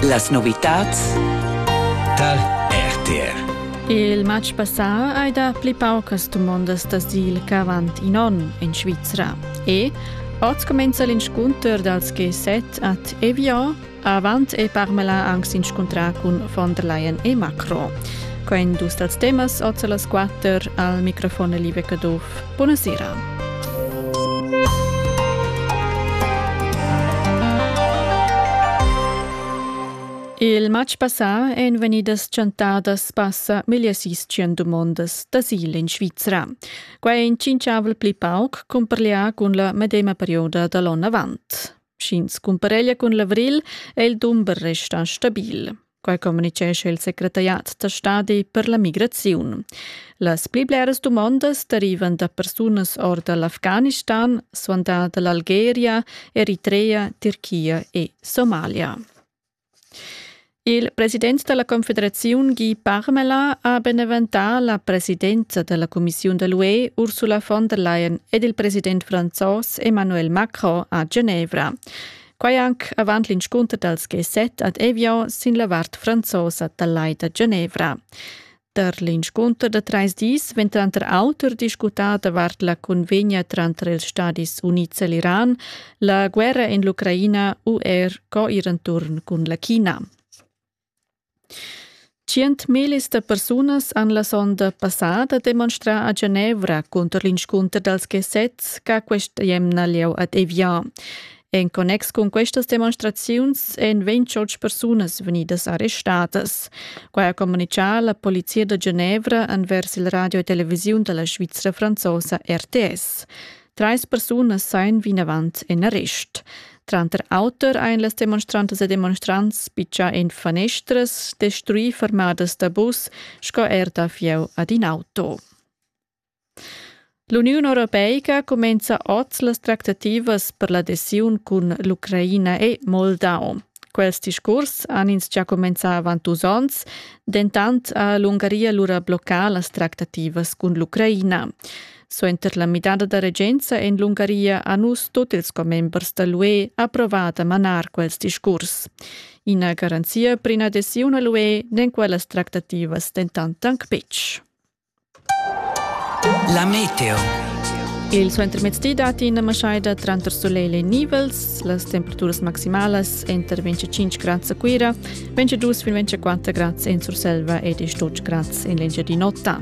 Las novitads tar RTR. Il matg passà hai dà pli paucas dumondas da sil ch'avant in onn en Svizra. E oz comenza l'inscunter dals G7 ad Evian. Avant e Parmela anc s'inscuntrà cun von der Leyen e Macron. Quai dus dals temas oz a las 4 al microfon Liebe Caduff Buna sera. Il matg passà èn vegnidas chantadas passa meglio sis tschient dumondas d'asil en Svizra. Quai è in tschinchavel pli pauc cumparlià cun la medema perioda da l'onn avant. Sch'ins cumpareglia cun l'avril è il dumber restà stabil. Quai communicescha il secretariat da stadi per la migraziun. Las pli bleras dumondas derivan da persunas or da l'Afghanistan, suandà da l'Algeria, Eritrea, Turchia e Somalia. Il president della Confederazione Guy Parmelin ha beneventà la presidenza della Commissione dell'UE Ursula von der Leyen ed il president francés Emmanuel Macron a Genevra. Quai anc avant l'inscunter dals G7 ad Evian sin la vart franzosa dal Lai da Genevra. Tar l'inscunter da trais dis vegn tranter auter discutà davart la cunvegna tranter ils Stadis Unids e l'Iran, la guerra en l'Ucraina u er co ir enturn cun la China. Tschientmillis da persunas han la sonda passada demonstrà a Genevra cunter l'inscunter dals Gesets ch'ha questa emna lieu ad Evian. En connex cun questas demonstraziuns èn 28 persunas vegnidas arrestadas. Quai ha communitgà la polizia da Genevra envers il radio e televisiun da la Svizra franzosa RTS. Treis persunas sain vinavant en arrest. Tranter auter ein las demonstrantas e demonstrants piccià en fanestras, destruì fermadas da bus sco er da fieu ad in auto. L'Uniun Europeica cumenza oz las tractativas per l'adesiun cun l'Ucraina e Moldau. Quels discurs han ins già cumenzà avant dus onns, dentant ha l'Ungaria lura bloccà las tractativas cun l'Ucraina. Suenter la midada da regenza en l'Ungaria ha nus tut ils commembers da l'UE approvà da manar quels discurs. Ina garanzia per ina adesiun a l'UE n'en quellas tractativas dentant anc betg. La meteo. Il suentermezdi datti ina maschaida tranter sulegl e nivels. Las temperaturas maximalas èn tar 25 grads a Cuira, 22 fin 24 grads en Surselva ed 8 grads en l'Engiadin'Ota.